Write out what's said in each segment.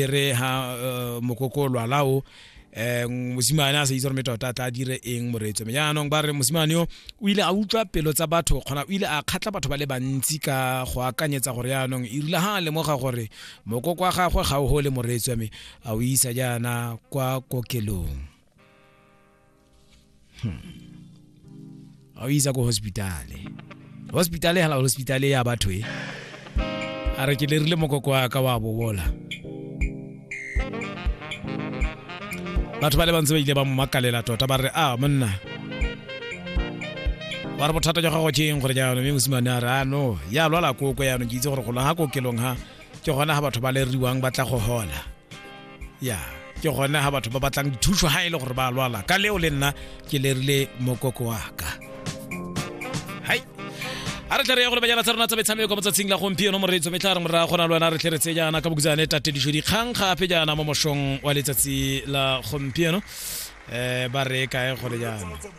e re ha eh, mokoko o lwala o eh, mosimane a sa itse gore me tota a tla dire eng moreetso me jaanong ba re mosimane yo o ile a utlwa pelo tsa batho kgona o ile a kgatla batho ba le bantsi ka go akanyetsa gore jaanong e rile ha a lemoga gore mokoko wa gagwe ga o gole moreetso me a o isa jaana kwa kokelong a o isa ko hospitale hospitale hala hospitale ya batho e a re ke lerile mokoko wa ka wa bobola batho ba le bantsi ba ile ba mo makalela tota ba re a monna ba re bothata jwa gago ke eng gore jaanong mme mosimane a re a no ya lwala koko yaanong ke itse gore golo ga kokelong ga ke gona ga batho ba leriwang ba tla go hola ya ke gone ga batho ba batlang dithuso ga e le gore ba lwala ka leo le nna ke lerile mokoko wa ka hai a re tle re ya go lebanyana tsa rona tsa metshameko mo tsatsing la gompieno moreetso me tla re moraya gona le wena re tle re tse jaana ka bokitsane tatediso dikgang gape jaana mo mošong wa letsatsi la gompieno um ba re kae gole jaana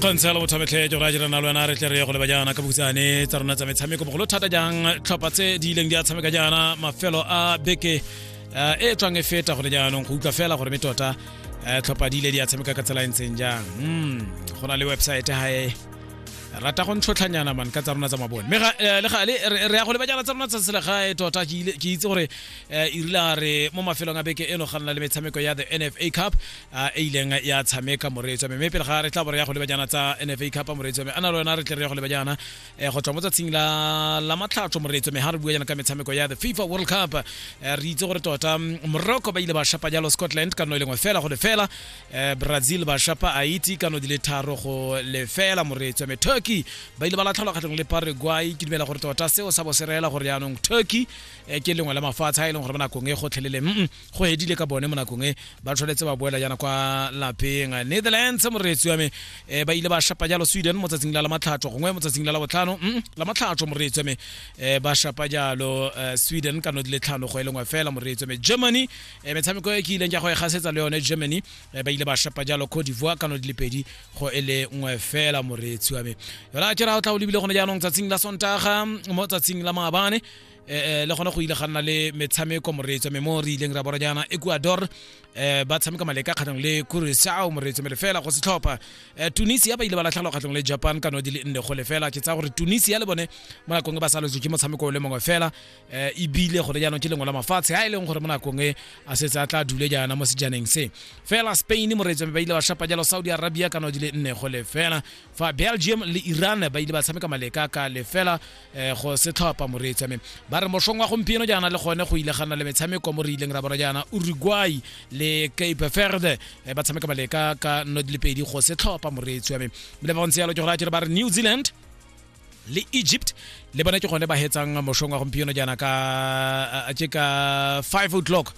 kgontshela lo bothametlhe ke gore a jira na le wena re tle re ye go leba jaana ka bokutsane tsa rona tsa metshameko bogolo thata jang tlhopha tse di ileng di a tshameka jaana mafelo a beke eh, e e tswang e feta gone jaanong go utlwa fela gore me tota eh, tlhopha di ile di a tshameka ka tsela e ntseng jang Mm, go na le websaete gae rata go ntlhotlhanyana man ka tsa rona tsa mabone mme ga- eh, le gale re re ya go leba jaana tsa rona tsa selegae tota ke ile- ke itse gore eh, e rile a re mo mafelong a beke eno ga nna le metshameko ya the nfa cup a e ileng ya tshameka moreetso mme pele ga re tla bore ya go leba jana tsa NFA Cup moreetso mme ana le wena re tle re ya go leba jana eh, go tswa mo tsatsing la la matlhatso moreetso mme ha re bua jana ka metshameko ya the FIFA World Cup eh, re itse gore tota mm, Morocco ba ile ba shapa jalo Scotland ka no e lengwe fela go lefela eh, Brazil ba shapa Haiti ka no di le tharo go lefela moreetso mme Turkey ba ile ba latlhelwa kgatlhanong le Paraguay ke dumela gore tota seo sa bo se reela gore yaanong Turkey eh, ke lengwe la mafatshe a e leng gore ba nakong e gotlhelele mm, mm. go edile ka bone mo nakong e ba tshwanetse ba boela yana kwa lapeng netherlands moreetsi wa me um ba ile ba shapa jalo sweden mo tsatsing la la matlhatso gongwe mo tsatsing la la botlhano mm, la matlhatso moreetsi wa me um ba shapa jalo eh, sweden ka no di le tlhano go e lengwe fela moreetsi wa me germany um metshameko e ke ileng ka go e gasetsa le yone germany um ba ile ba shapa jalo cote divoire ka no di le pedi go e le nngwe fela moreetsi wa me yona ke ra o tla o lebile gone jaanong tsatsing la sontaga mo tsatsing la maabane eh, eh, le gona go ile ga nna le metshameko moreetso me mo re ileng ra bora jaana ecuador um ba tshameka maleka kgatlhong le curacao moreetso me lefela go setlhopha um tunisia ba ile ba latlhelwa kgatlhong le japan ka no di le nne go lefela ke tsaya gore tunisia le bone mo nakong e ba saletswe ke motshameko o le mongwe fela um ebile gore jaanong ke lengwe la mafatshe a e leng gore mo nakong e a setse a tla dule jaana mo sejaneng se fela spain moreetso me ba ile ba shapa jalo saudi arabia ka no di le nne go lefela fa belgium le iran ba ile ba tshameka maleka ka lefela eh go se tlhopa moreetsi ame ba re mošong wa gompieno jaana le gone go ile ga nna le metshameko mo re ileng ra bona jaana uruguay le cape verde eh, ba tshameka baleka ka nno di le pedi go se tlhopa moreetsi ame le ba ntse yalo ke go raya ba re new zealand le egypt le bone ke gone ba hetsang mošong wa gompieno jaana ka ke ka five o'clock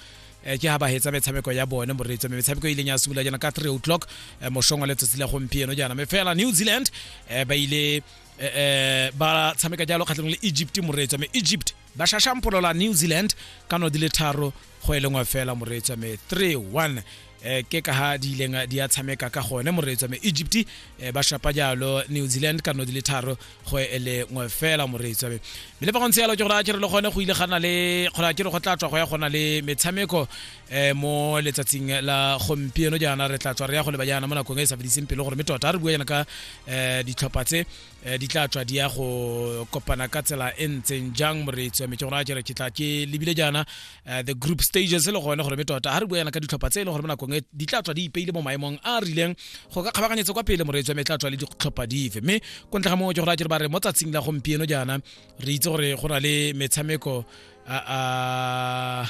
eh, ke ha ba hetsa metshameko ya bone moreetsi ame metshameko e ileng ya simolola jaana ka three o'clock eh, mošong wa letsatsi la gompieno jaana me fela new zealand ba ile eh, eh, ba tshameka jalo kgatlhanong le egypt moreetswa me egypt ba shashampolola new zealand ka no di le tharo go e lengwe fela moreetswa me 3-1 eh, ke ka ha di ileng di a tshameka ka gone moreetswa me egypt eh, ba shapa jalo new zealand ka no di le tharo go e lengwe fela moreetswa me mme le fa go ntse jalo ke gore a kere le gone go ile gana le kgona kere go tla tswa go ya gona le metshameko eh mo letsatsing la gompieno jaana re tla tswa re ya go leba jaana mo nakong e e sa fediseng pelo gore mme tota re bua jaana ka um ditlhopha tse eh, di tla tswa di ya go kopana ka tsela e ntseng jang moreetsi wa metse gona jere ke tla ke lebile jaana eh, the group stages e le gone gore mme tota ga re bua jaana ka ditlhopha tse e le gore mo nakong e di tla tswa di ipeile mo maemong a a rileng go ka kgabaganyetsa kwa pele moreetsi wa me e tla tswa le ditlhopha dife mme ko ntle ga moo ke gore a jere ba re mo tsatsing la gompieno jaana re itse gore go na le metshameko a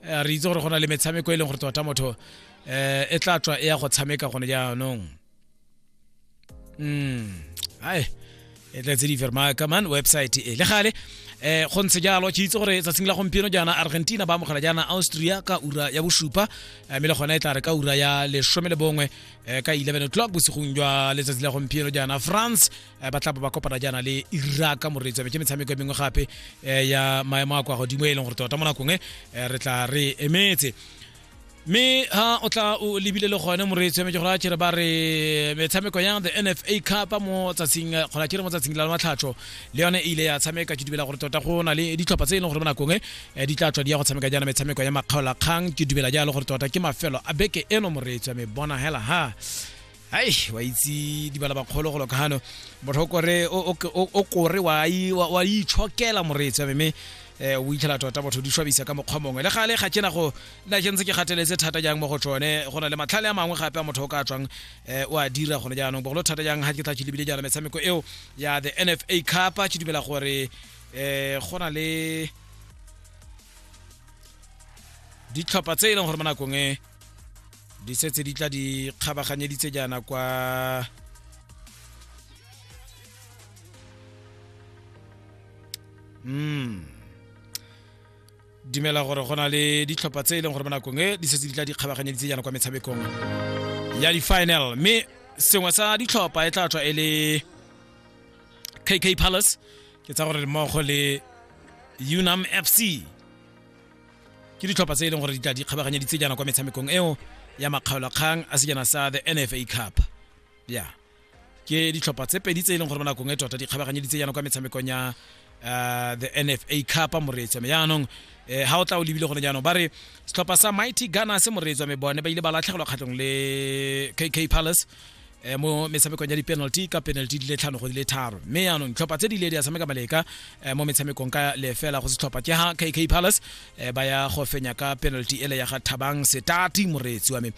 Eh, re itse gore go na le metshameko e leng gore tota motho um e tla tswa e ya go tshameka gone jaanong mm ai e tletse di ferma kaman website e le gale eh go ntse jalo ke itse gore tsatsing la gompieno jaana argentina ba amogela jaana austria ka ura ya bosupa eh, mme le gona e tla re ka ura ya lesome le bongwe eh, ka 11 o'clock bosigong jwa letsatsi la gompieno jaana france eh, ba tla ba kopana jaana le iraka moreetsi wa me ke metshameko e mengwe gape eh, ya maemo a kwa godimo e leng gore tota mo nakong e eh, re tla re emetse mme ha o tla o lebile le gone moreetsi wa me ke gore a kere ba re metshameko ya the nfa cup mo tsatsing kgona kere mo tsatsing la matlhatsho le yone e ile ya tshameka ke dumela gore tota go na le ditlhopha tse e leng gore mo nakong e di tla tswa di ya go tshameka jaana metshameko ya makgaolakgang ke dumela jalo gore tota ke mafelo a beke eno moreetsi wa me bona hela ha ai wa itse dibala bakgolo go lokano motho kore o kore wa wa itshokela moreetsi wa me eh o itlhela tota botho di shwabisa ka mokgwa mongwe le gale ga tsena go na ke ntse ke gateletse thata jang mo go tsone go na le matlhale a mangwe gape a motho o ka tswang eh, o a dira gone jaanong bogolo thata jang ga ke tla ke lebile jaana metshameko eo ya the NFA Cup ke dumela gore eh go na le ditlhopha tse e leng gore mo nakong e di setse di tla di kgabaganyeditse jaana kwa mm dumela gore go na le ditlhopha tse e leng gore mo nakong e di setse di tla di kgabaganyeditse jaana kwa metshamekong ya di-final mme sengwe sa ditlhopha e tla tswa e le kk palace ke tsa gore mmogo le unam fc ke ditlhopha tse e leng gore di tla di kgabaganya ditsejana kwa metshamekong eo ya makgaolakgang a sejana sa the nfa cup ya ke ditlhopha tse pedi tse e leng gore mo nakong e tota di kgabaganye ditsejana kwa metshamekong ya uh, the nfa cup moreetswa me yaanong eh, ha o tla o lebile gone jaanong ba re setlhopha sa mighty gunners moreetswa me bone ba ile ba latlhegelwa kgatlhong le kk palace eh, mo metshamekong ya di-penalty ka penalty di le tlhano go di le tharo mme yaanong ditlhopha tse di ile di a tshameka maleka eh, mo metshamekong ka lefela go setlhopha ke ha kk palace eh, ba ya go fenya ka penalty ele ya ga thabang setati moreetsi wa me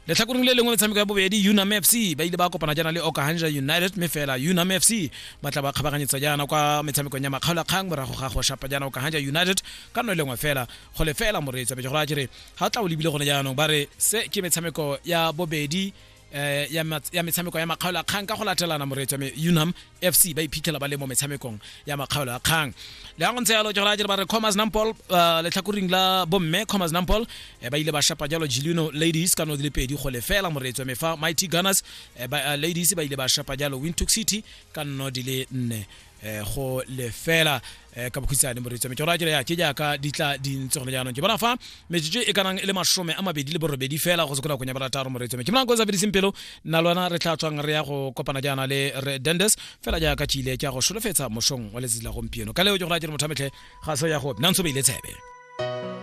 letlhakoreng le lengwe metshameko ya bobedi unam fc ba ile ba kopana jaana le okahanja united mme fela unam fc ba tla ba kgabaganyetsa jaana kwa metshamekong ya makgaolakgang morago ga go shapa jaana okahanja united ka nno e lengwe fela go le fela moreetsi a petse gore a kere ga tla o lebile gone jaanong ba re se ke metshameko ya bobedi eh ya ya metshameko ya makgaolo a kgang ka go latelana moreetso me unam fc ba iphitlhela ba le mo metshamekong ya makgaolo a kgang le go ntse yalo jora jere ba re commerce nampol eh, letlhakoring la bomme commerce nampol eh, ba ile ba shapa jalo jilino ladies ka no di le pedi go lefela moreetso me fa mighty gunners eh, ba, eh, ladies ba ile ba shapa jalo windhoek city ka no di le nne eh, go lefela eh, ka bokhutshwane moreetso metsoro a kere ya ke jaaka di tla di ntse gone jaanong ke bona fa metsotso e kanang e le masome a mabedi le borobedi fela go sekola konya barataro moreetso me ke bonang ko sa fediseng pelo nna lona re tla tswang re ya go kopana jaana le re dendes fela jaaka tšile ke ya go solofetsa mosong wa letsatsi la gompieno ka leo ke go ra kere motho a metlhe ga se ya go nna ntse beile tshebe